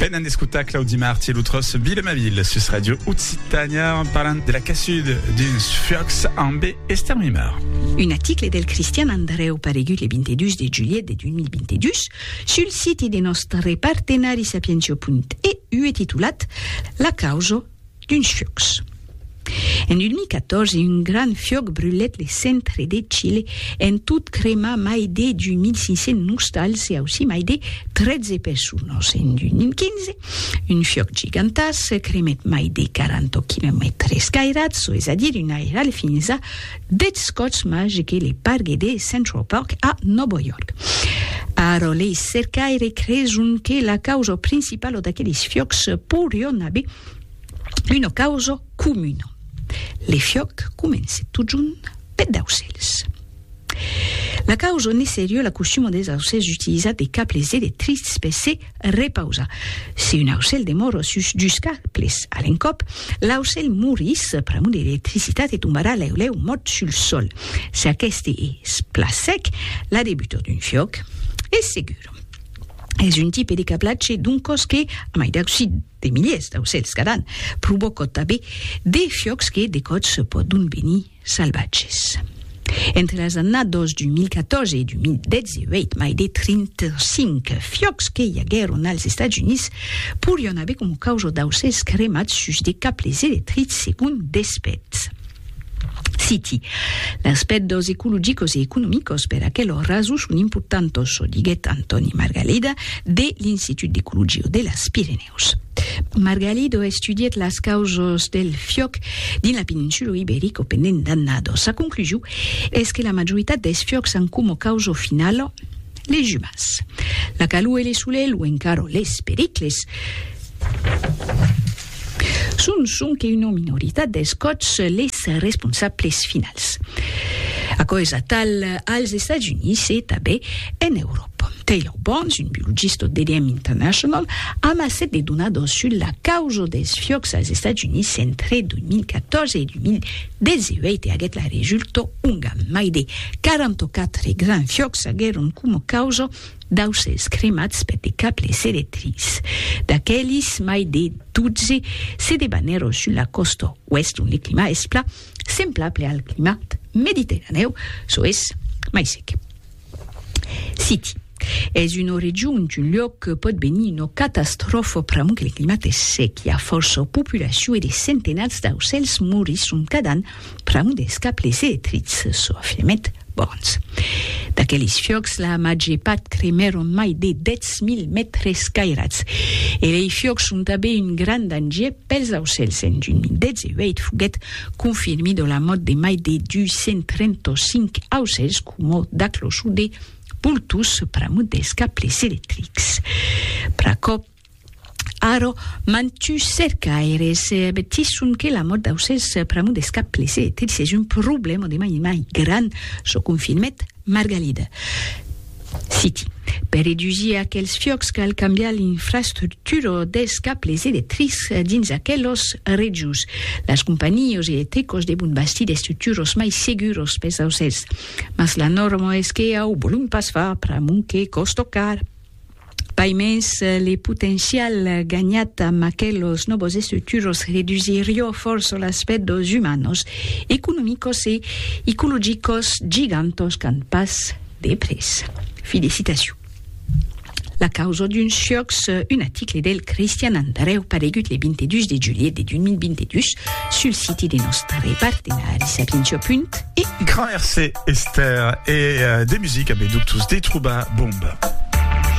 Venen d'escotar Claudi Marti e lo tròç Vila ma ville sus Radio Occitània en parlant de la cassud d'uns fuòcs ambe Esther Mimar. Un aticle del Cristian Andreu paregut le 22 de julhet de 2022 sul siti de nòstre partenari sapientio.eu e titulat La causa d'uns fiòcs. En 2014, un grand fiòc brulèt le centre de Chile, en tot cremar mai de 2.500 nostals e aussí mai de 13 personas. En 2015, un fiòc gigantàs cremèt mai de 40 quilomètres cairats, çò es a dire un airal fins a Deth Scots Magi que le pargue de Central Park a Nòvo York. Ara lei cercaires creson que la causa principala d'aqueles fiòcs pourrion aver una causa comuna. Le fiòc comence totjorn peth d'aucèls. La causa ne serie la costuma des aucèls d'utilizar de cables electrics per se Repausa. Si un aucèl demòro sus dus caples a l'encòp, l'aucèl morís pr'amor de l'electricitat e tombarà lèu lèu mòrt sul sòl. Si aqueste es plan sec, la debutor d'un fiòc es segur. Es un tipe de cablatge d'un còs que, a mai d'ausir de miliers d'aucèls cada an, provòca tanben de fiòcs que de còps pòdon venir salvatges. Entre las annados 2014 e 2018, mai de 35 fiòcs que i aguèron als Estats Units porián aver coma causa d'aucèls cremats sus de cables electrics, segon Despètz. Citi, Las pèrdas ecologicas e economicas per aquela rason son importantas, diguèt Antòni Margalida de l'Institut d'Ecologia de las Pirenèus. Pirineus. Margalido estudièt las causas del fiòc dins la peninsula Iberica pendent d'annadas. Sa conclusion es que la majoritat dels fiòcs an coma causa finala les umans. La calor e le solelh o encara les pericles son sonque una minoritat dels còps les responsables finals. Aquò es atal als Estats Units e tanben en Euròpa. Pòm Taylor Barnes, un biologista au DDM International, amassèt de donadors sus la causa dels fiòcs als Estats Units entre 2014 e 2018 e aguèt la resulta onga mai de 44 grands fiòcs aguèron coma causa d'aucèls cremats per de cables electrics. D'aquelis, mai de 12 se debanèron sus la còsta oèst ont le climat es plan semblable al climat mediterranèu, çò es mai sec. City. Es una region d'un luòc que pòt venir una catastròfa pr'amor que le climat es sec, i a fòrça populacion e de centenats d'aucèls morisson cada an pr'amor dels cables electrics, çò afirmèt Burns. D'aqueles fiòcs, la màger part cremèron mai de 10.000 mètres cairats. E lei fiòcs son tanben un grand danger pels aucèls. En 2018 foguèt confirmida la mòrt de mai de 235 aucèls coma d'aclochon de boltons pr'amont dels cables electrics. Pr'aquò, ara, mantuns cercaires avertisson que la mòrt d'aucèls pr'amont dels cables electrics es un problèma de mai en mai grand, çò confirmèt Margalida. Citi, Per redusir aquels fiòcs cal cambiar l'infrastructura dels cables electrics dins aquelas regions. Las companhios e tecos devon bastir d'estructuros mai seguros pes aucèls, mas la norma es que au volum pas far pr'amont que còsto car. Pai mens, le potencial ganhat amb aquelos nòvos estructuros redusirió fòrça l'aspèct dos umanos, economicos e icologicos gigantòs qu'an pas de près. Fi de citacion. La causa d'un siòc, un aticle del Cristian Andrèu paregut le 22 de julhet de 2022 sul siti de nòstre partenari Sapientia Punt e. Grand Hercé Esther e de musica be ductus de Trouba Bomba.